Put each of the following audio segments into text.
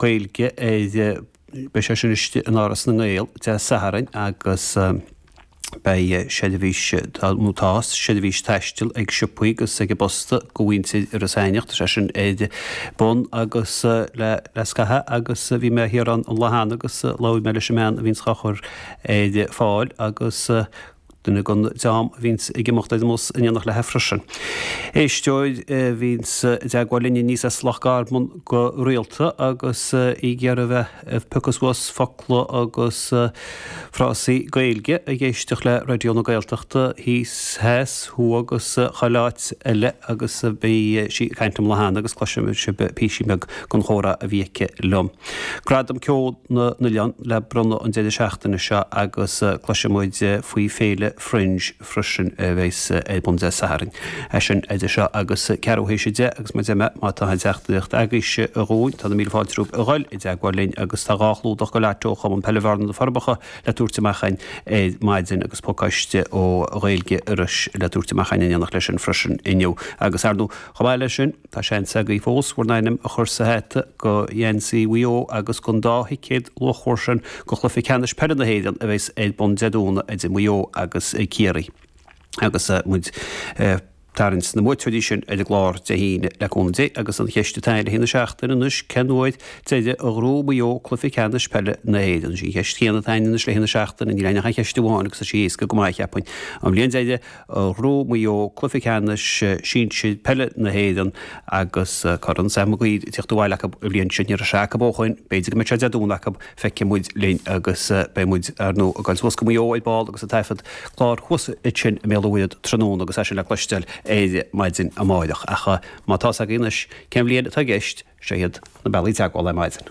Gaeilge ar, beidh sé sin istigh in Áras na nGael Dé Sathairn agus beidh seirbhís, nó tá, seirbhís taistil ag siopaí agus ag an bposta go mhuintir Iorras Aithneach. Tá sé sin ar bun anois le scaitheamh agus bhí mé thiar ann an lá cheana agus labhair mé leis an mbean a bhíonns á chur ar fáil agus duine den dream a bhíonns ag imeacht ar an mbus in éineacht léithi freisin. Éisteoir a bhíonns i dteagmháil linn aníos as Loch Garman go rialta agus í ag iarraidh a bheith ag piocadh suas focla agus frásaí Gaeilge, ag éisteacht le Raidió na Gaeltachta thíos, theas, thuaidh agus chuile áit eile agus bhí sí ag caint liom an lá cheana agus cloisfidh sibh píosa beag den chomhrá a bhí aici liom. Gradam Ceoil na nOileán le bronnadh an deireadh seachtaine seo agus cloisfidh muid faoi Féile Fringe freisin a bheas ar bun Dé Sathairn. É sin idir seo agus ceathrú théis a deich agus muid amuigh. Má tá aon teachtaireacht agaibhse dhúinn, tá na míle fáilte romhaibh a dhul i dteagmháil linn agus tá dhá chlúdach dho leairt ó Chumann Peile Bhearna, Na Forbacha le tabhairt amach againn ar maidin agus pacáiste ó Ghaeilge Iorrais le tabhairt amach againn in éineacht leis sin freisin inniu. Agus, ar ndóigh, chomh maith leis sin. Tá seans agaí fós bhur n-ainm a chur sa hat do gheansaí Mhaigh Eo agus don dá thicéad luachmhar sin do chluiche ceannais peile na hÉireann a bheas ar bun Dé Domhnaigh idir Maigh Eo agus Ciarraí agus muid ag tarraingt na mbuaiteoirí sin ar an gclár Dé hAoine, le cúnamh Dé. Agus an cheist atá ann le haghaidh na seachtaine anois, cén uair deireadh a ghnóthaigh Maigh Eo cluiche ceannais peile na hÉireann? Is í an cheist chéanna atá ann anois le haghaidh na seachtaine, níl ach aon cheist amháin agus tá sí éasca go maith, cheapfainn. An bhliain deireadh a ghnóthaigh Maigh Eo cluiche ceannais sinsir peile na hÉireann agus Corn Sam Mag Uidhir ag teacht abhaile acu an bhliain sin. Ní raibh sé acu ó shoin. B'fhéidir go mbeidh sé Dé Domhnaigh acu. Feicfidh muid linn agus beidh muid, ar ndóigh, ag goil suas go Maigh Eo ar ball agus ag taifeadadh clár thuas ansin i mBéal an Mhuirthead tráthnóna agus é sin le cloisteáil ar maidin amárach. Ach má tá's agat anois cén bhliain atá i gceist, seo iad na bealaí teagmhála ar maidin.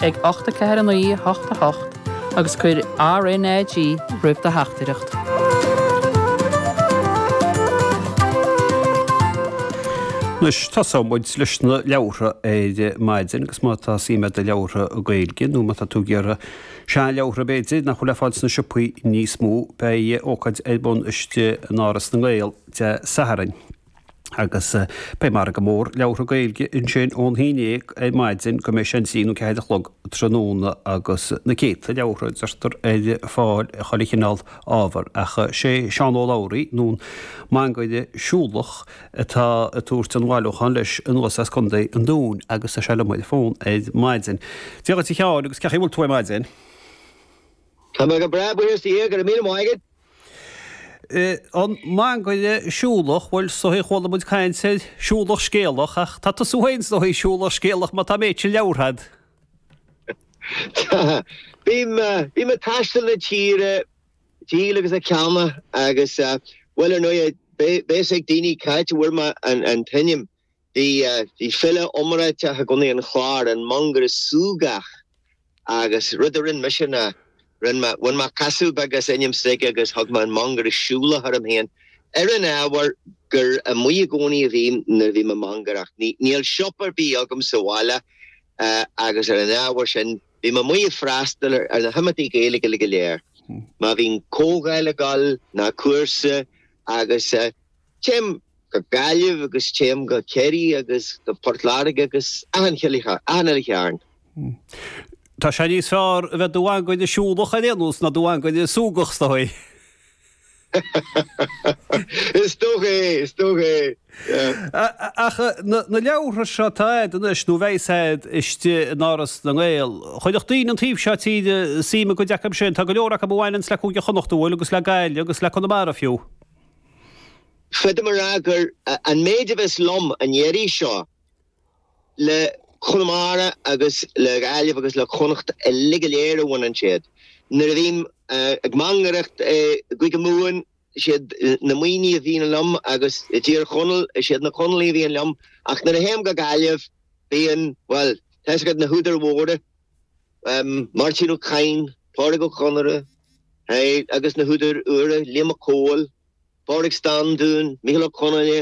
ag 8 4 9 8 8 agus cuir RNAG roimh do theachtaireacht. Anois tosóidh muid leis na leabhartha ar maidin agus má tá suim agat i leabhartha Gaeilge nó má tá tú ag iarraidh seanleabhartha b'fhéidir nach bhfuil le fáil sna siopaí níos mó beidh ócáid ar bun istigh in Áras na nGael Dé Sathairn. Agus beidh margadh mór leabhartha Gaeilge ansin ón haon déag ar maidin go mbeidh sé an trí nó ceathair a chlog tráthnóna agus na céadta leabhartha, deirtear, ar fáil, chuile chineál ábhar. Ach is é Seán Ó Labhraí, nó an Mangaire Siúlach, atá ag tabhairt an bhailiúcháin leis anuas as Co. an Dúin agus tá sé liom ar an bhfón ar maidin. Dia dhuit, a Sheáin, agus cé chaoi a bhfuil tú ar maidin? Tá mé go breá, buíochas do Dhia. Go raibh míle maith agat. An Mangaire, Siúlach, Bhuel, is dóigh chuala muid caint ar siúlach scéalach, ach tá tusa féin is dóigh siúlach scéalach má tá an méid sin leabhar agat. Tá. Bím ag taisteal na tíre ag díol agus ag ceannach agus, bhuel, ar ndóigh, beidh fhios ag daoine cá háit a bhfuair mé an t-ainm. Bhí file iomráiteach i gContae an Chláir, an Mangaire Súgach, agus rud a rinn mise ná rinn mé, bhain mé casadh beag as ainm s'aige agus thug mé An Mangaire Siúlach orm féin, ar an ábhar gur amuigh i gcónaí a bhínn nuair a bhí mé ag mangaireacht. Níl siopa ar bith agam sa bhaile agus ar an ábhar sin bím amuigh ag freastal ar na himeachtaí Gaeilge uilig go léir, má bhíonn comhdháil ag dul ná cúrsa agus. Téim go Gaillimh agus téim go Ciarraí agus go Port Láirge agus achan uile chearn. Tá sé níos fearr a bheith i do mhangaire siúlach ar aon nós ná i do mhangaire súgach, is dóigh. Is dócha é, is dócha é. Ach na leabhartha seo, tá siad anois, nó beidh siad istigh in Áras na nGael. Chuirfeadh daoine an taobh seo tíre suim i gcuid acu sin, tá go leor acu a bhaineanns le Cúige Chonnacht, bhuel, agus le Gaillimh agus le Conamara fiú. Féadaim a rá gur, an méid a bheas liom an iarraidh seo, le Conamara agus le Gaillimh agus le Connacht uilig go léir a bhaineann siad. Nuair a bhím ag mangaireacht i gCúige Mumhan, siad na Muimhnigh a bhíonn liom agus i dTír Chonaill, siad na Conallaigh a bhíonn liom, ach nuair a théim go Gaillimh, bíonn, bhuel, tá fhios agat na húdair mhóra. Máirtín Ó Cadhain, Pádraic Ó Conaire, agus na húdair úra, Liam Mac Cóil, Pádraig Standún, Micheál Ó Conghaile,